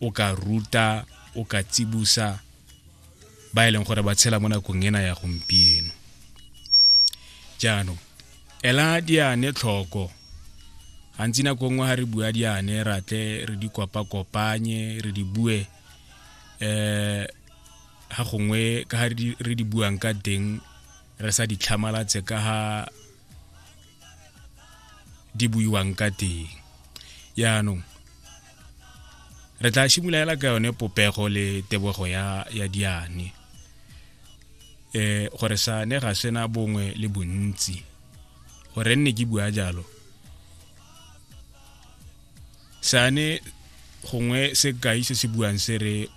o ka ruta o ka tsibusa ba e leng gore ba tshela mo nakong ena ya gompieno jaanong ela diane tlhoko gantsi nako nngwe ga re bua diane ratle re di kopa-kopanye re di bue um ga gongwe ka ga re di buang ka teng re sa di tlhamalatse ka ga di buiwang ka teng yaanong re tla simolola ka yone popego le tebogo ya ya diane eh gore sa ne ga sena bongwe le bontsi gore nne ke bua jalo sane gongwe se kai se se buang se re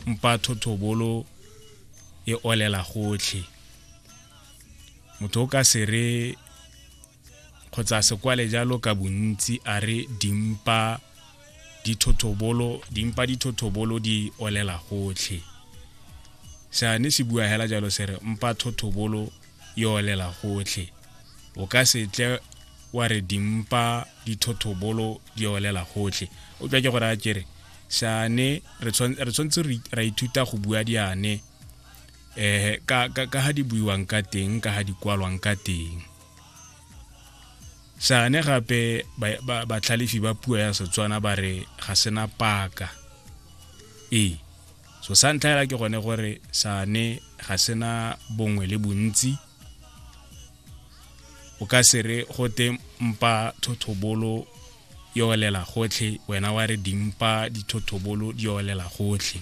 mpa thotobolo e olela gotlhe motho o ka se re kgotsa sekwale jalo ka bontsi a re dimpa dithothobolo dimpa dithothobolo di olela gotlhe seane se bua hela jalo se re mpa thothobolo e olela gotlhe o ka se tle wa re dimpa dithothobolo di olela gotlhe o tswa ke gore a kere seane re tshwanetse ra ithuta go bua diane eh ka ka ka ha di buiwang ka teng ka ha di kwalwang ka teng sane gape batlhalefi ba puo ya setswana ba re ga sena paka ee so sa ntlha fela ke gone gore sane ga sena bongwe le bontsi o ka se re gote mpa thothobolo yolela gotlhe wena wa re dimpa dithothobolo di yolela gotlhe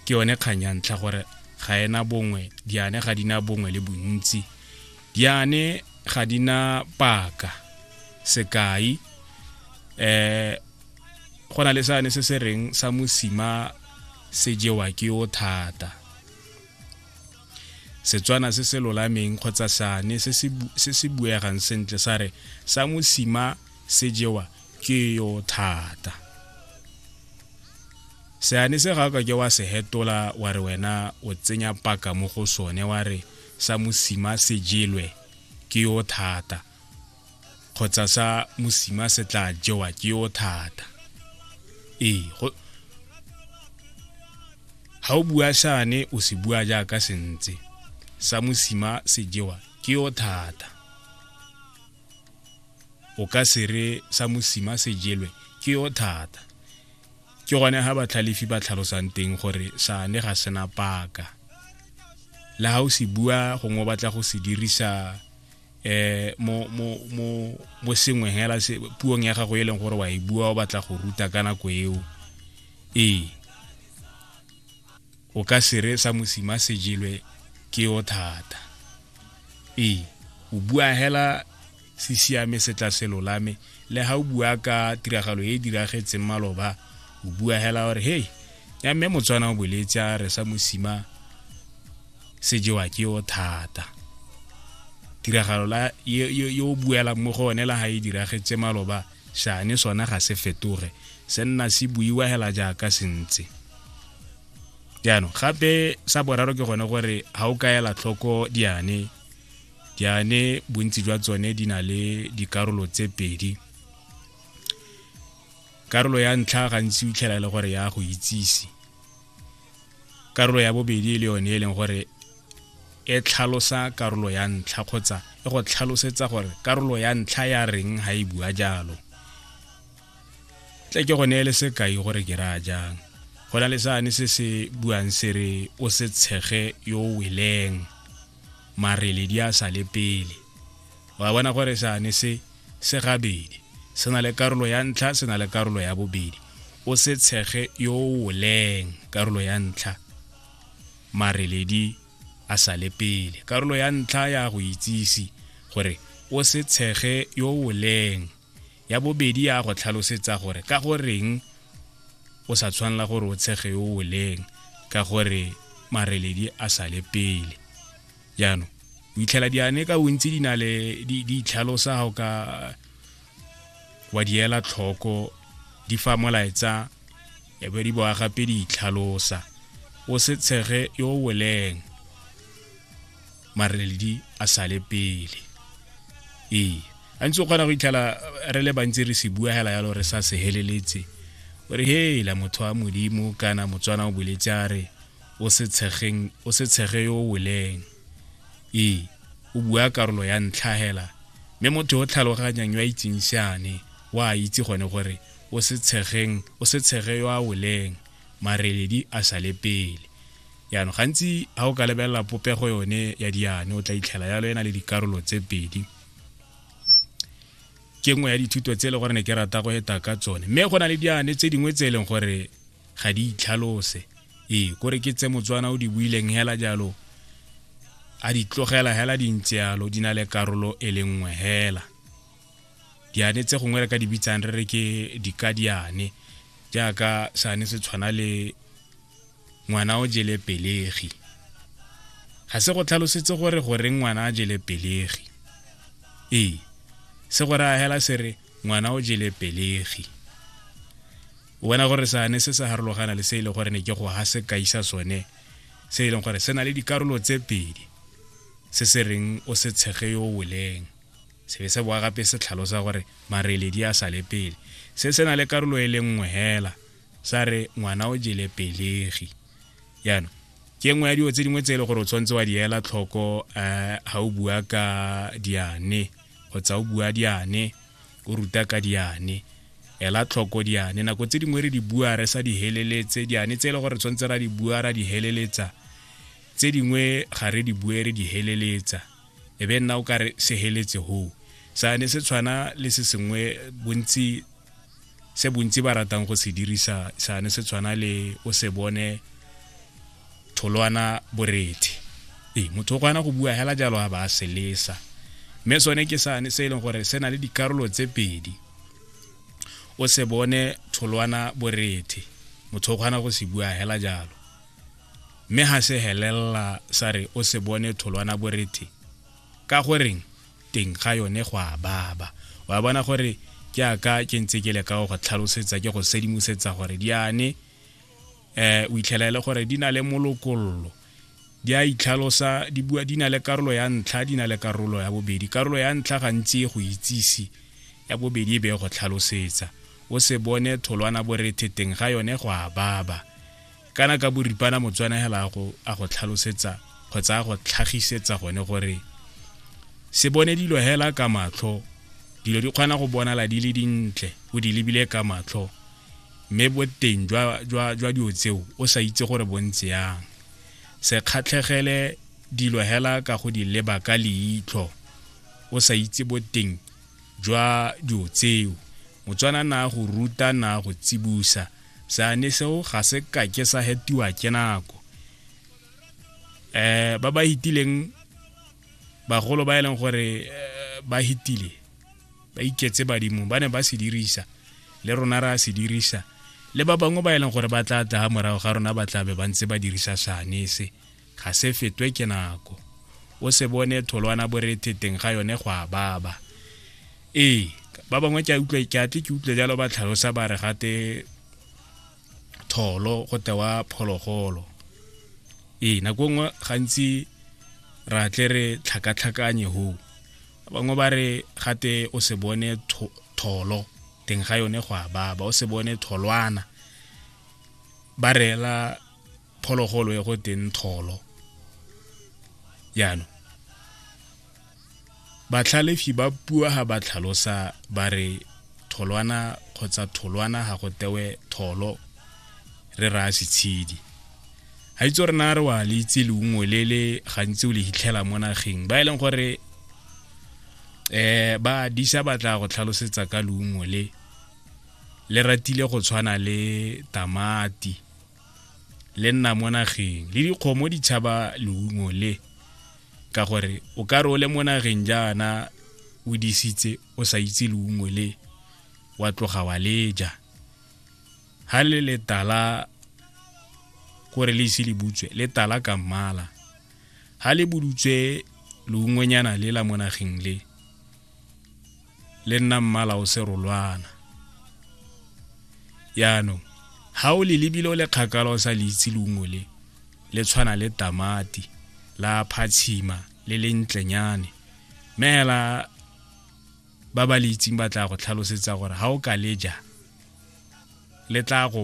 ke yone kgang ya ntlha gore ga ena bongwe diane ga di na bongwe le bontsi diane ga di na paka sekai eh go na le sane se se reng sa mosima se jewa ke o thata setswana se se lolameng kgotsa sane se se buegang sentle sa re sa mosima se jewa ke yo thata seane se ga ka ke wa se hetola wa re wena o tsenya paka mo go sone wa re sa mosima se jelwe ke yo thata kgotsa sa mosima se tla jewa ke yo thata ee ga o bua sane o se bua jaaka sentse sa mosima se jewa ke yo thata o ka se re sa mosima se jelwe ke yo thata ke gone ga batlhalefi ba tlhalosang teng gore sane ga sena paka le ga o se bua gongwe o batla go se dirisa eh mo mo mo mo sengwe hela se puong ya gago e leng gore wa e bua o batla go ruta ka nako eo ee o ka se re sa mosima se jelwe ke yo thata ee o bua hela se siame se tla se lolame le ga o bua ka tiragalo e e diragetseng maloba o bua hela gore hei ya mme motswana o boletse a re sa mosima se jewa ke yo thata tiragalo la yo buelang mo go one la ga e diragetse maloba Seane sona ga se fetoge se nna se buiwa hela jaaka se ntse jaanong gape sa boraro ke gone gore ga o ka ela tlhoko diane diane bontsi jwa tsone di na le dikarolo tse pedi karolo ya ntlha gantsi o itlhela e le gore ya go itsise karolo ya bobedi e le yone e leng gore e tlhalosa karolo ya ntlha kgotsa e go tlhalosetsa gore karolo ya ntlha ya reng ga e bua jalo tle ke go neele sekai gore ke raya jang go na le sane se se buang se re o se tshege yo o weleng marele di a sa le pele wa bona gore sane se se gabedi se na le karolo ya ntlha se na le karolo ya bobedi o se tshege yo o leng karolo ya ntlha mareledi a sa le pele karolo ya ntlha ya go itsise gore o se tshege yo o leng ya bobedi ya go tlhalosetsa gore ka go reng o sa tshwanela gore o tshege yo o leng ka gore mareledi a sale pele jaanong o itlhela diane ka bontsi di na le di itlhalosa ga o ka wa di ela tlhoko di fa molaetsa e be di boa gape di itlhalosa o se tshege yo o weleng mareledi a sale pele ee a ntse o kgona go itlhela re le bantsi re se bua hela yalo re sa se heleletse o re hela motho wa modimo kana motswana o boletse a re o se tshegeng o se tshege yo o weleng ee o bua karolo ya ntlha hela mme motho o tlhaloganyang yo a itseng seane o a itse gone gore o se tshegeng o se tshege yo a weleng mareledi a sale pele yaanong gantsi ga o ka lebelela popego yone ya diane o tla itlhela yalo e na le dikarolo tse pedi ke nngwe ya dithuto tse e le gore ne ke rata go eta ka tsone mme go na le diane tse dingwe tse e leng gore ga di itlhalose ee kore ke tse motswana o di buileng hela jalo a di tlogela hela di ntse yalo di na le karolo e le nngwe hela diane tse gongwe re ka di bitsang re re ke dikadiane jaaka sane se tshwana le ngwana o jele pelegi ga se go tlhalosetse gore gore ngwana a jele pelegi ee se gore a hela se re ngwana o jele pelegi o bona gore sane se sa harologana le se e leng gore ne ke go ha se kaisa sone se e leng gore se na le dikarolo tse pedi se se reng o se tshege yo woleng se be se boa gape se tlhalosa gore mareledi a sale pele se se na le karolo e le nngwe hela sa re ngwana o jele pelegi jaanong ke nngwe ya dilo tse dingwe tse e le gore o tshwanetse wa di ela tlhoko um ga o bua ka diane kgotsa o bua diane o ruta ka diane ela tlhoko diane nako tse dingwe re di bua re sa di heleletse diane tse e le gore tshwanetse ra di bua ra di heleletsa tse dingwe ga re di bue re di heleletsa e be nna o ka re se heletse hoo sane se tshwana le se sengwe bontsi se bontsi ba ratang go se dirisa sane se tshwana le o se bone tholwana borethe ee motho o kgona go bua hela jalo a ba a se lesa mme sone ke sane se e leng gore se na le dikarolo tse pedi o se bone tholwana borethe motho o kgona go se bua hela jalo mme ha se helelela sa re o se bone tholwana borethe ka goreng teng ga yone go a baba wa bona gore ke aka ke ntse ke le ka go tlhalosetsa ke go sedimosetsa gore di ane eh o itlhela e le gore di na le molokololo di a itlhalosa di bua di na le karolo ya ntlha di na le karolo ya bobedi karolo ya ntlha gantsi e go itsise ya bobedi e be go tlhalosetsa o se bone tholwana borethe teng ga yone go a baba kana ka boripana motswana hela a go a go tlhalosetsa kgotsa a go tlhagisetsa gone gore se bone dilo hela ka matlho dilo di kgona go bonala di le dintle o di lebile ka matlho mme boteng jwa jwa jwa dilo tseo o sa itse gore bontse yang se kgatlhegele dilo hela ka go di leba ka leitlho o sa itse boteng jwa dilo tseo motswana na go ruta na go tsibusa seane seo ga se kake sa hetiwa ke nako eh ba ba hitileng bagolo ba e leng gore eh, ba hitile ba iketse badimo ba ne ba se dirisa le rona ra se dirisa le ba bangwe ba e leng gore ba tla tla morago ga rona ba tlabe ba ntse ba dirisa seane se ga se fetwe ke nako o se bone tholwana borethe teng ga yone go a baba ee ba bangwe ke utlwe ke atle ke utlwe jalo ba tlhalosa ba re gate tholo go tewa phologolo ee nako e nngwe gantsi ra tle re tlhakatlhakanye hoo bangwe ba re gate o se bone tholo teng ga yone go a baba o se bone tholwana ba reela phologolo e go teng tholo jaanong batlhalefi ba pua ga ba tlhalosa ba re tholwana kgotsa tholwana ga go tewe tholo re raya setshedi ga itse re na re wa le itse leungwe le le gantsi o le hitlhela mo nageng ba e leng gore eh ba disa batla go tlhalosetsa ka leungwe le le ratile go tshwana le tamati le nna mo nageng le dikgomo di tshaba leungo le ka gore o ka re o le mo nageng jaana o disitse o sa itse leungo le wa tloga wa leja ha le letala kore le ise le butswe le tala ka mmala ha le budutswe leungonyana le la mo nageng le le nna mmala o serolwana yaanong ga o le lebile o le kgakala o sa le itse leungo le le tshwana le tamati la phatshima le le ntlenyane meela ba ba le itseng ba tla go tlhalosetsa gore ga o ka le ja le tla go